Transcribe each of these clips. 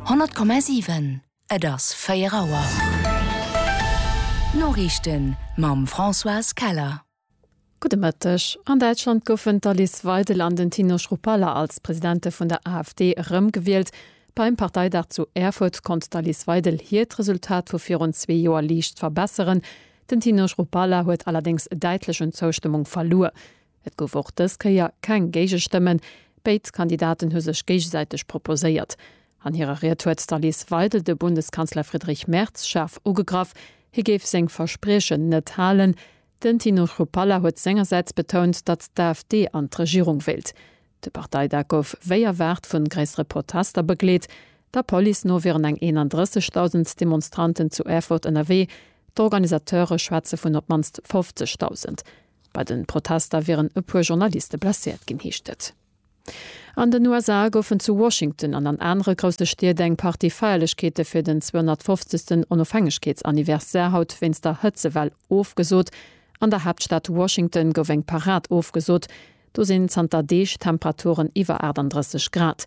100,7 Et ass 4 Auer. D'Noriichten mam Françoise Keller. Gudde Mëtteg. An Däitschland goufen d'Alice Weidel an den Tino Schruppalla als Presidente vun der AfD erëm gewielt. Beim Parteidag zu Erfurt konnt d'Alice Weidel hiert Resultat vu virun zwee Joer liicht verbesseren. Den Tino Schruppalla huet allerdéngs däitlech un Zoustëmmung verluer. Et gouf och dës Kéier keng Géigestëmmen. Béid Kandidaten hu sech géigesäiteg proposéiert. An hirer Ried huet d'Alice Weidel de Bundeskanzler Friedrich Merz schaarf ugegraff, hie géif seng Verspriechen net halen. Den Tino Chrupalla huet sengersäits betount, datt d'AfD an d'Regierung wéilt. De Parteidag gouf wéi erwaart vu gréissere Protester begleet. Der Police no wieren eng 31.000 Demonstranten zu Erfurt ënnerwee. D'Organisateure schwätze vun op d'mannst 50.000. Bei de Protester wieren e puer Journaliste blesséiert ginn, heescht et. An den USA goufen zu Washington an an anere grousse Stied eng Partie Feierlechkeete fir den 250. Onofhängegkeetsanniversaire haut wéinst der Hëtzewell ofgesot. An der Haaptstad Washington gouf eng Parad ofgesot. Do sinn zanter Deeg Temperaturen iwwer 38 Grad.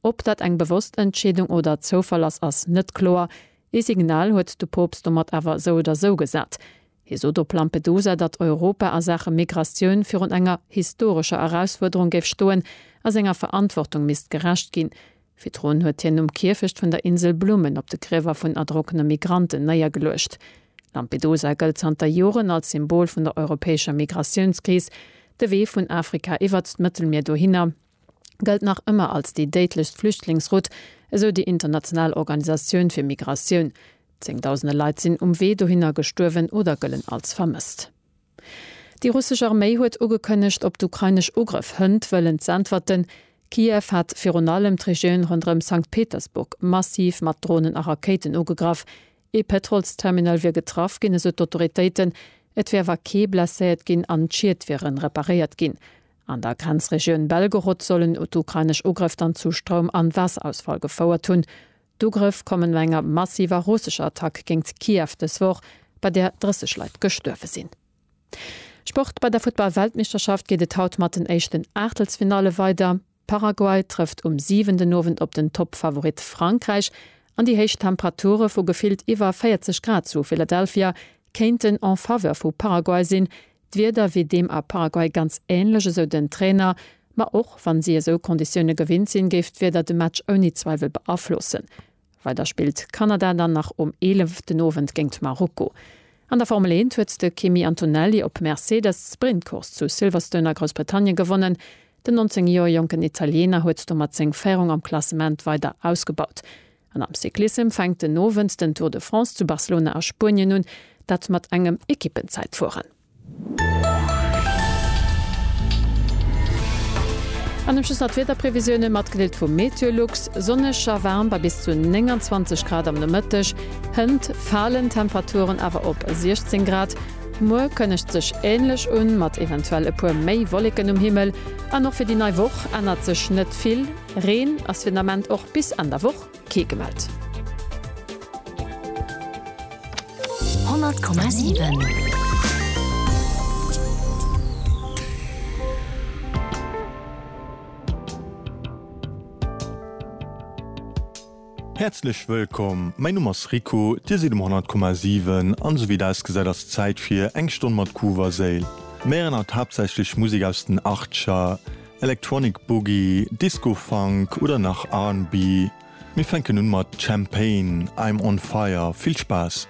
Ob dat eng bewosst Entscheedung oder Zoufall ass, ass net kloer. Ee Signal huet de Poopst domat awer esou oder esou gesat. Hie sot op Lampedusa, datt Europa a Saache Migratioun virun enger historescher Erausfuerderung géif stoen a senger Verantwortung misst gerecht ginn. Virdrun huet hien um Kierfecht vun der Insel Blumen op de Griewer vun erdronkene Migranten néiergeluecht. Lampedusa gëllt zanter Joren als Symbol vun der europäescher Migratiounskris, de Wee vun Afrika iwwert d'Mëttelmier dohinner, gëllt nach ëmmer als déi déidlechst Flüchtlingsroute, esou déi international Organisatioun fir Migratioun. Zéngdausende Leit sinn um Wee dohinner gestuerwen oder gëllen als vermësst. Déi russesch Arméi huet ugekënnegt, op d'ukrainesch Ugrëff hënt wëllen z'äntwerten. Kiew hat virun allem d'Regioun ronderëm Sankt Petersburg massiv mat Dronen a Rakéiten ugegraff. Ee Pétrolsterminal wier getraff ginn, esou d'Autoritéiten. Et wier awer kee blesséiert ginn an d'Schied wiere reparéiert ginn. An der Grenzregioun Belgorod sollen d'ukrainesch Ugrëff dann zu Stroum an Waasser-Ausfall gefouert hunn. D'Ugrëff kommen no enger massiver russescher Attack géingt Kiew dës Woch, bei där 30 Leit gestuerwe sinn. Sport, Bei der Futtball-Weltmeeschterschaft geet et haut mat den éischten Aachtelsfinalle weider. Paraguay trëfft um 7 den Owend op den Toppfavorit Frankräich an déi héich Temperature vu gefillt iwwer 40 Grad zu Philadelphia kéinten en Faveur vu Paraguay sinn, D'Wieder wier deem a Paraguay ganz änlech, esou den Trainer. Ma och wa si esou Konditioune gewinnt sinn, géif d'Wieder de Match ouni Zweiwel beaflossen. Weider spillt Kanada dann nach um 11 den Owend géingt Marokko. An der Formel Eent huet de Kimi Antonelli op Mercedes d'Sprintcourse zu Silverstone a Groussbritannien gewonnen. Den 19 Joer jonken Italiener huet domat seng Féierung am Klassement weider ausgebaut. An am Cyclissem fänkt den Owend den Tour de France zu Barcelona a Spuenien un, dat mat engem Ekippenzäitfueren. An um Schluss nach d'Wiederprevisiounen, matgedeelt vum Meteolux, Sonneg a waarm bei bis zu 29 Grad am Nomëtteg, hënt falen d'Temperaturen awer op 16 Grad. Muer kënnegt sech änlech un, mat eventuell e puer méi Wolleken um Himmel. An och fir déi nei Woch ännert sech net vill. Reen ass fir den Ament och bis Enn der Woch kee gemellt. 100,7. Häerzlech wëllkomm, mäin Numm ass Rico, dir sidd um 100,7 an esou wéi et ausgesäit ass Zäit fir eng Stonn mat Groove a Séil. Mir héieren haut haaptsächlech Musek aus den Achtcher, Electronic Boogie, Disco Funk oder nach R&B. Mir fänken un mat Champaign, I'm on Fire. Vill Spaass!